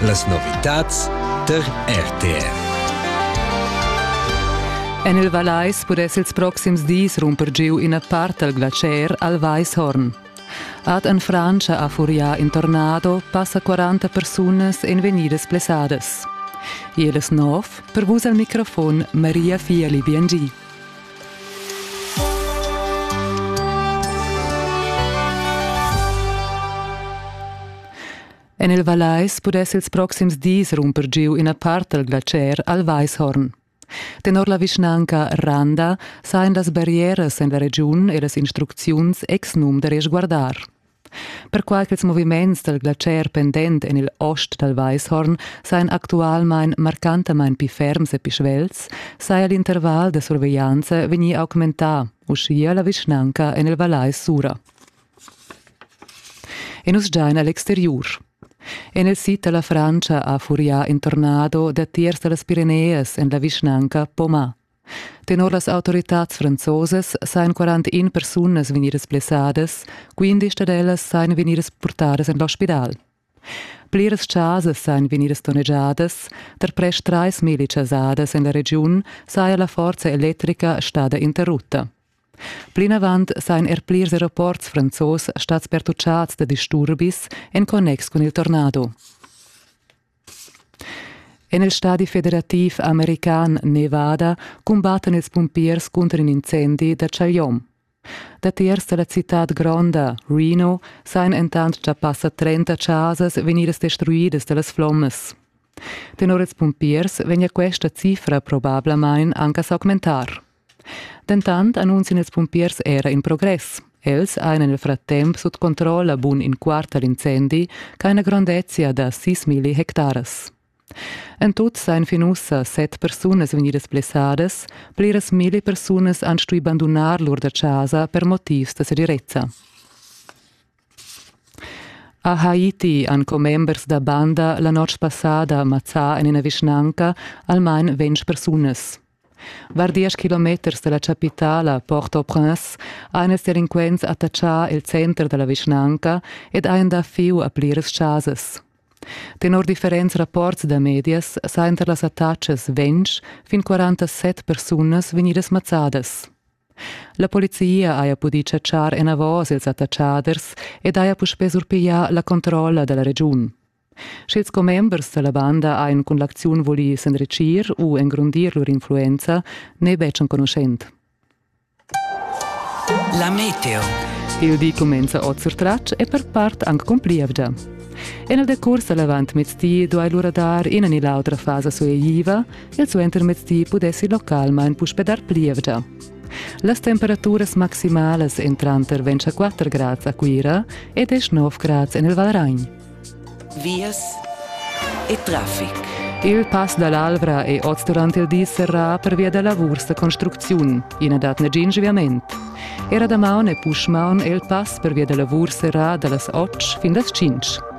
Las novitads tar RTV. En il Vallais pudess ils proxims dis rumper giu ina part dal glacier al Weishorn. Ad en Frantscha ha furià in tornado passa 40 persunas en vegnidas blessadas. Iris Nov, per vus al microfon Maria Fieli Biengi. En il Vallais pudess ils proxims dis rumper giu ina part dal glacier al Weishorn. Tenor la vischnanca Randa sajan las barrieras en la regiun e las instrucziuns ex num da resguardar. Perquai ch'ils moviments dal glatscher pendent en il ost dal Weishorn sajan actualmain marcantamain pli ferms e pli svelts, saja l'interval da surveglianza vegnì augmentà, uschia la vischnanca en il Vallais Sura. E nus giain a l'exteriur. En il sid da la Frantscha ha furià in tornado datiers da las Pireneas en la vischnanca Poma. Tenor las autoritads franzosas sajan 41 persunas vegnidas blessadas, quindisch dad ellas sajan vegnidas purtadas en l'ospidal. Pliras chasas sajan vegnidas donnegiadas, tar prest trais milli chasadas en la regiun saja la forza electrica stada interrutta. Plinavant sajan er plirs aeroports franzos stads pertuccads da disturbis en connex cun il tornado. En il stadi federativ american Nevada cumbattan ils pumpiers cunter in incendi da chagliom. Datiers da la citad gronda, Reno, sajan entant gia passa 30 chasas vegnidas destruidas da las flommas. Tenor ils pumpiers vegnia questa cifra probablamain anche a s'augmentar. Dentant annunzien ils pumpiers era in progress. Els ein nel frattemp sut controlla bun in quartal incendi ca ina grondezia da 6.000 hectares. En tut sein fin ussa set persunas vegnidas blessadas, pliras mille persunas han stui bandunar lur da casa per motivs da segirezza. A Haiti han commembers da banda la notg passada mazzà en ina vischnanca almain ventg persunas. Var diesch kilometers da la chapitala Port-au-Prince han ils delinquents attachà il center da la vischnanca ed han dà fieu a pliras chasas. Tenor differents rapports da medias sajan tar las attachas ventg fin 47 persunas vegnidas mazzadas. La polizia haja pudì chatschar enavos ils attatschaders ed haja puspè surpiglià la controlla da la regiun. Sch'ils commembers da la banda hajan cun l'acziun vulì s'enritgir u engrondir lur influenza, n'è betg enconuschent. La meteo. Il di cumenza oz sur tratg e per part anc con plievgia. En il decurs da l'avantmezdi duai lura dar ina ni l'autra fasa sueigliva il suentermezdi pudessi localmain puspè dar plievgia. Las temperaturas maximalas en tranter 24 grads a Cuira e 19 grads en il Valragn. Vias e traffic. Il pass dall'Alvra è oz durant il di serrà pervia da lavurs da construcziun. Ina dat negin sviament. Era damaun e puschmaun è il pass pervia da lavur serrà da las 8 fin las 5.